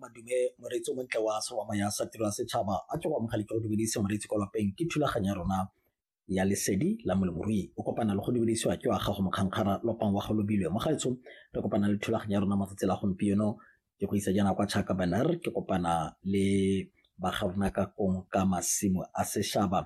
Madume, moreetsi o montle wa serwama ya sa tiro ya setšhaba a ke go amogele ke go dumedise moreetsi kwa lapeng ke thulaganyo ya rona ya lesedi la molemorui o kopana le go dumedisiwa ke wa gago mokgankgara lopang wa go lobilwe mo gaetsho re kopana le thulaganyo ya rona matsatsi la gompieno ke go isa jaana kwa chaka banar ke kopana le bagarona ka kong ka masimo a sešhaba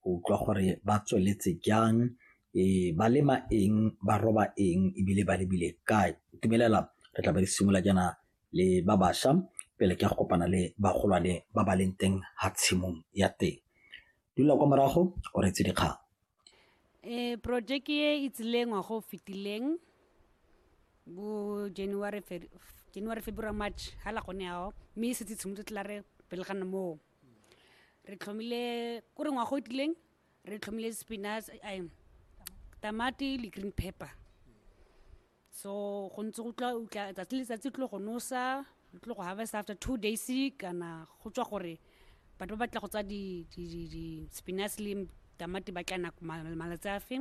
go utlwa gore ba tsweletse jang e ba lema eng ba roba eng ebile ba lebile kae tumelela re tla ba re simolola jaana le ba bašwa pele ke ya go kopana le bagolwane ba ba leng teng ga tshimong ya teng dula kwa morago o retse dikgang um projeke e e tsileng ngwago o fetileng bo january january february march ga la gone yao mme e setse tshimotse tla re pele ga moo re tlhomile ko re ngwago o tileng re tlhomile spinach tamati le green pepper so go ntse go tla utla tsatsi le tsatsi tlo go nosa tlo go harvest after two days kana go tswa gore batho ba batla go tsa di di di di spinach le tamati ba tla nako malatsi a fe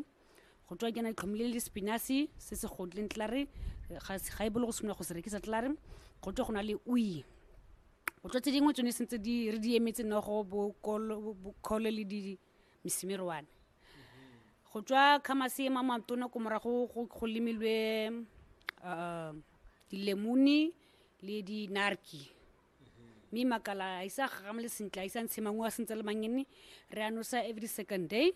go tswa kena tlhomile le spinach se se godleng tlare ga e bolo go simolola go se rekisa tlare go tswa go na le ui go tswa tse dingwe tsone sentse di re di emetse nogo bo kolo le di misimirwane go tswa khamase e mamatona ko morago go go lemilwe uh, dilemuni le dinarki mme makala a isa gagame le sentle a isa ntshe mangwe a sentse le mangene re a nosa every second day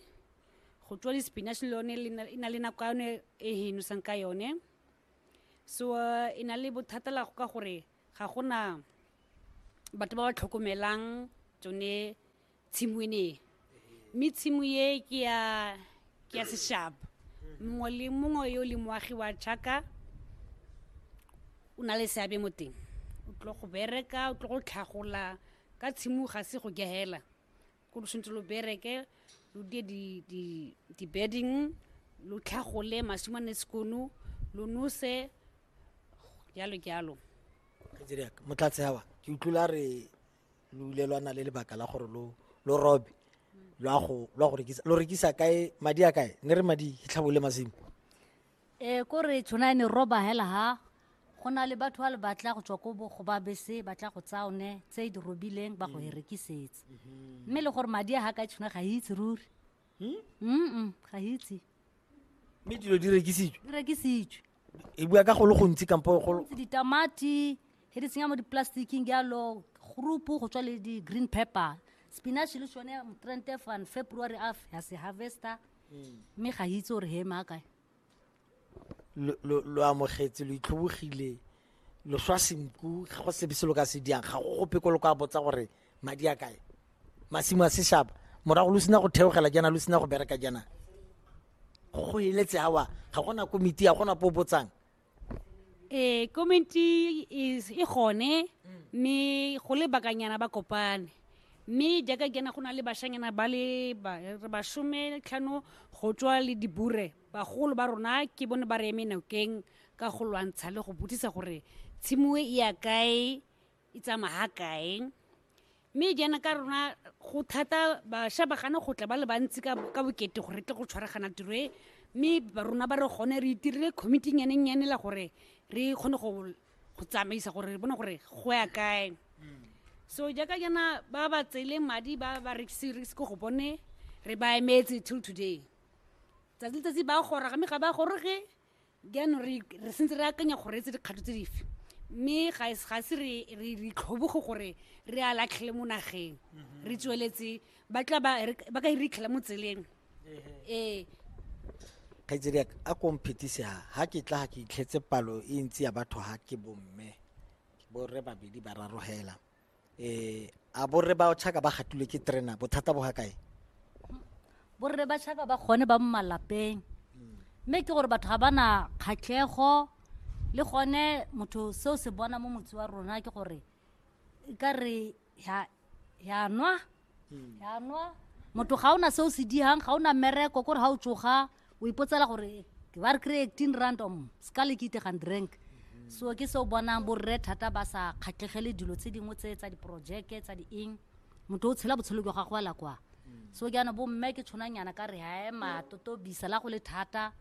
go tswa di-spinach le yone le na- e na le nako ya yone e e nosang ka yone so uh, e na le bothata la go ka gore ga gona batho ba ba tlhokomelang tsone tshimo e ne e mme tshimo e ke ya ke ya seshaba mongwe le mongwe yo le moagi wa jaka o na le seabe mo teng o tlo go bereka o tlo go tlhagola ka tshimo ga se go gehela ko lo tshwanetse lo bereke lo die di-bedding lo tlhagole masumane sekono lo nose jalo jalo motlatse awa ke utlwile re lo ile lwa na le lebaka la gore lo lo robe lwa go lwa go rekisa lo rekisa kae madi a kae ne re madi hitlhabole masimo e ko re tshwana ne roba hela ha go na le batho ba le batla go tswa ko bo go ba bese ba tla go tsaya one tse di robileng ba go e rekisetsa mme le gore madi a ha ka tshwana ga e itse ruri mm ga e itse mme dilo di rekisitswe di rekisitswe e bua ka go le gontsi kampo go ditamati he di tsenya mo di-plasticking jalo groupu go tswa le di-green pepper spinach le sone motrente fan february a ya se harvester hmm. mme ga itse gore he maakae lo amogetse lo itlhobogile lo swa senku ga go sebe se lo ka se diang ga go gope ko lo ka botsa gore madi a kae masimo a seshaba morago lo sena go theogela jaana lo sena go bereka jaana go eletse awa ga gona komiti ya gona po botsang ee komiti e gone mme go le bakanyana ba kopane mme jaaka kena go na le bashanyana ba le bashome tlhano go tswa le dibure bagolo ba rona ke bone ba re eme nokeng ka go lwantsha le go botsisa gore tshimoe e ya kae e tsamaya ha kae mme jaana ka rona go thata bašwa ba gana go tla ba le bantsi ka ka bokete gore re tle go tshwaragana tiro e mme ba rona ba re gone re itirile committee nyanennyane la gore re kgone go go tsamaisa gore re bone gore go ya kae so jaaka jaana ba ba tseele madi ba ba rekise rekise ko go bone re ba emetse till today tsatsi letsatsi ba goroga mme ga ba goroge jaanong re re sentse re akanya go reetse dikgato tse dife mme ga es- ga se re re re itlhoboge gore re a latlhele mo nageng re tsweletse ba tla ba re- ba ka re itlhela mo tseleng ee kgaitsedi yaka a ko mphetise ha ha ke tla ga ke itlhetse palo e ntsi ya batho ha ke bomme borre babedi ba raro hela eh a borre ba tšhaka ba gatulwe ke terena bothata bo ga kae borre ba tšhaka ba gone ba mo malapeng mme ke gore batho ga ba na kgatlhego le gone motho seo se bona mo motse wa rona ke gore e ka re ya nwa yanwa motho ga o na se o se digang ga o na mmereko kore ga o tsoga o ipotsela gore ke ba re kry eighteen rand om se ka le ke itegang drink so ke se o bonang borre thata ba sa kgatlhegele dilo tse dingwe tse tsa diporojeke tsa dieng motho o tshela botshelo jwa gagwe ala kwa so ke yana bomme ke tshwanang yana ka re hae matotobisa la go le thata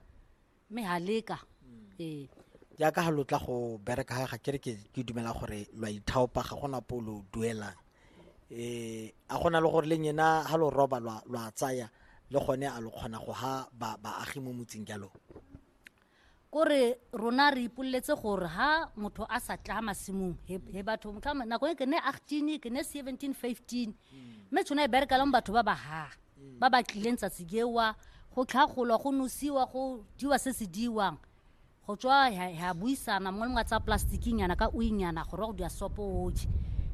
mme ha leka ee jaaka ga lo tla go bereka ga ga kere ke ke dumela gore lo a ithaopa ga gona po lo duelang eh a gona le gore le nyena ha lo roba lwa lwa tsaya le gone a lo kgona go ha ba baagi mo motseng jalo kore rona re ipoleletse gore ha motho a sa tla masimong he he batho motlhama nako e ke ne 18 ke ne 17 15 mme tshwana e bereka le mo batho ba ba ha ba ba tlileng tsatsi jewa go tlhagolwa go nosiwa go diwa se se diwang go tswa ya buisana mongwe le mongwe a tsaya plastiking yana ka uinyana gore wa go dira sopo oje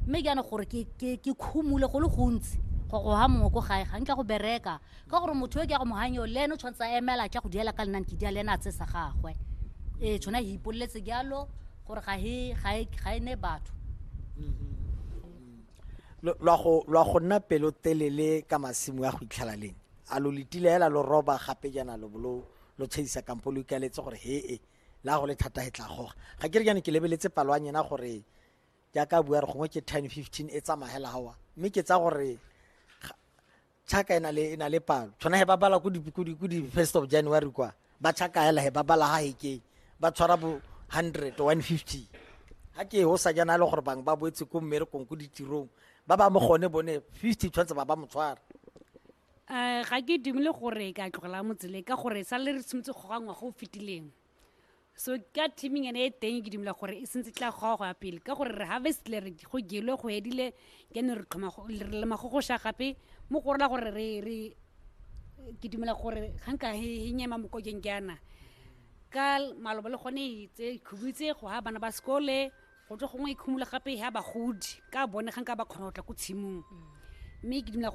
mme jaana gore ke khumule go le gontsi go go ha mongwe ko gae ga nkitla go bereka ka gore motho yo ke ya go moganyo le ene o tshwanetse a emela tla go diela ka lenane ke dia le ene a tsesa gagwe ee tshwana e ipoleletse jalo gore ga e ne batho mm-hmm. lwa go lwa go nna pelo telele ka masimo a go itlhela leng a lo letile hela lo roba gape jana lo bolo lo tshedisa kampo lo ikaletse gore he e la go le thata he tla goga ga ke re jane ke lebeletse palo ya nyena gore jaaka bua re gongwe ke ten fifteen e tsamagela gawa mme ke tsa gore chaka e na le e na le palo tshwana he ba bala ku di ku di ku di first of january kwa ba chaka hela he ba bala ha he ke ba tshwara bo 100 150 ha ke ho sa jana le gore bang ba boetse ko mmerekong ko ditirong ba ba mo gone bone 50 tshwanetse ba ba mo tshwara um ga ke dumele gore ka tlogela motsele ka gore sa le re tshwanetse go gangwa go fetileng so ka teaming ene e teng ke dumela gore e sentse tla goa go ya pele ka gore re harvestile re go gelwe go edile kene re tlhoma re lema go goša gape mo go rela gore re re ke dumela gore ga nka e nyema mokokeng ke yana ka malobo le gone e tse khubitse go ha bana ba sekole go tswa gongwe e khumula gape ya bagodi ka bone ga nka ba kgona go tla ko tshimong mme ke dumela